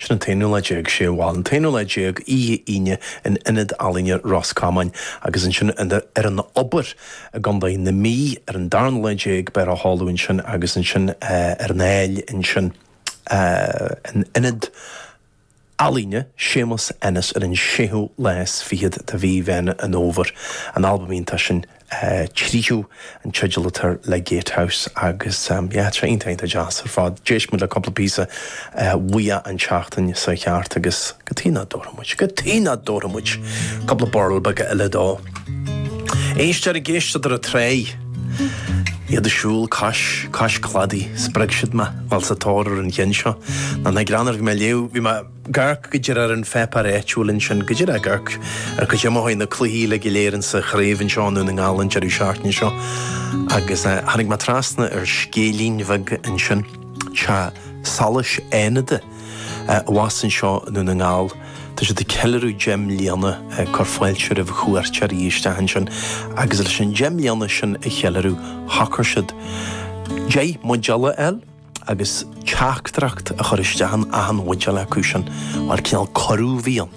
Sin an t-aonú lá déag, sea bhuel, an t-aonú lá déag, oíche Aoine, in Ionad Ealaíne Ros Comáin agus ansin ar an Obair i gContae na Mí ar an darna lá déag, beifear á sheoladh ansin agus ansin ar an Aill ansin in Ionad Ealaíne Séamus Ennis ar an séú lá is fichead de mhí Mheán an Fhómhair. An albam iontach sin Tríú an teideal atá air le Gatehouse agus yeah tá sé iontach iontach deas ar fad. D'éist muid le cúpla píosa uaidh an tseachtain seo thart agus cad chuige nach dtabharfadh muid, cad chuige nach dtabharfadh muid cúpla burl beaga eile dó. Éisteoir ag éisteacht ar an trá, iad ag siúl cois, cois cladaigh, spreag siad mé, bhuel sa tóir ar an cheann seo. Nach greannmhar, bhí mé ag léamh, bhí mé, ag amharc go díreach ar an pháipéar áitiúil ansin, go díreach ag amharc cad é mar a chuaigh na cluichí uile go léir insa chraobh anseo i nDún na nGall an deireadh seachtaine seo. Agus tháinig mé trasna ar scéilín bheag ansin, Teach Solais Fhánada, abhus anseo i nDún na nGall, tá siad ag ceiliúradh deich mbliana ag cur fáilte roimh chuairteoirí isteach ansin. Agus leis an deich mbliana sin a cheiliúradh, shocair siad deich mbuidéal a fháil, agus teachtaireacht a chur isteach in achan bhuidéal acu sin, mar cineál cuireadh a bhí ann,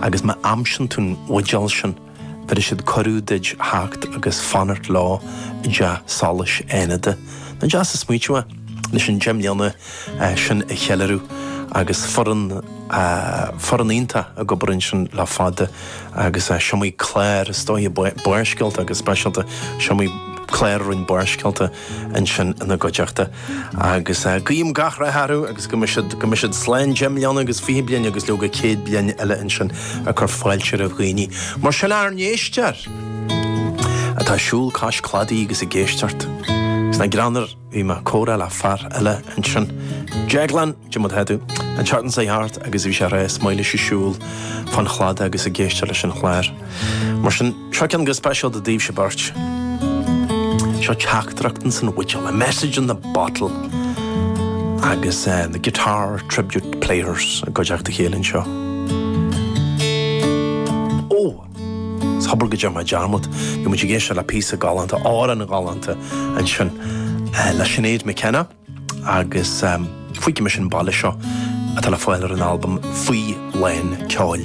agus má aimsíonn tú an bhuidéal sin, bhéarfaidh siad cuireadh duid theacht agus fanacht leo i dTeach Solais Fhánada. Nach deas an smaoiteamh é, leis an deich mbliana sin a cheiliúradh, agus foireann, foireann iontach ag obair ansin le fada, agus is iomaí clár, is dóigh, Barrscéalta go speisialta, is iomaí clár a rinne Barrscéalta, ansin ina gcuideachta agus guím gach rath orthu agus go mbeidh siad go mbeidh siad slán deich mbliana agus fiche bliain agus leoga céad bliain eile ansin ag cur fáilte roimh dhaoine mar sin ár n-éisteoir atá ag siúl cois cladaigh agus ag éisteacht. Agus nach greannmhar bhí mé ag comhrá le fear eile ansin Deaglán diomad Headú an tseachtain seo thart agus bhí sé ag rá is maith leis siúl fán chladach agus ag éisteacht leis an chlár mar sin Seo ceann go speisialta daoibhse beirt. Seo teachtaireacht ins an bhuidéal, a message in the bottle, agus the Guitar Tribute Players i gcuideachta a chéile anseo. Ó! Is hobair go dtearn mé dearmad, bhí muid ag éisteacht le píosa galánta, amhrán galánta ansin le Sinéad McKenna agus Fuígfidh Mise an Baile Seo atá le fáil ar an albam Faoi Lán Ceoil.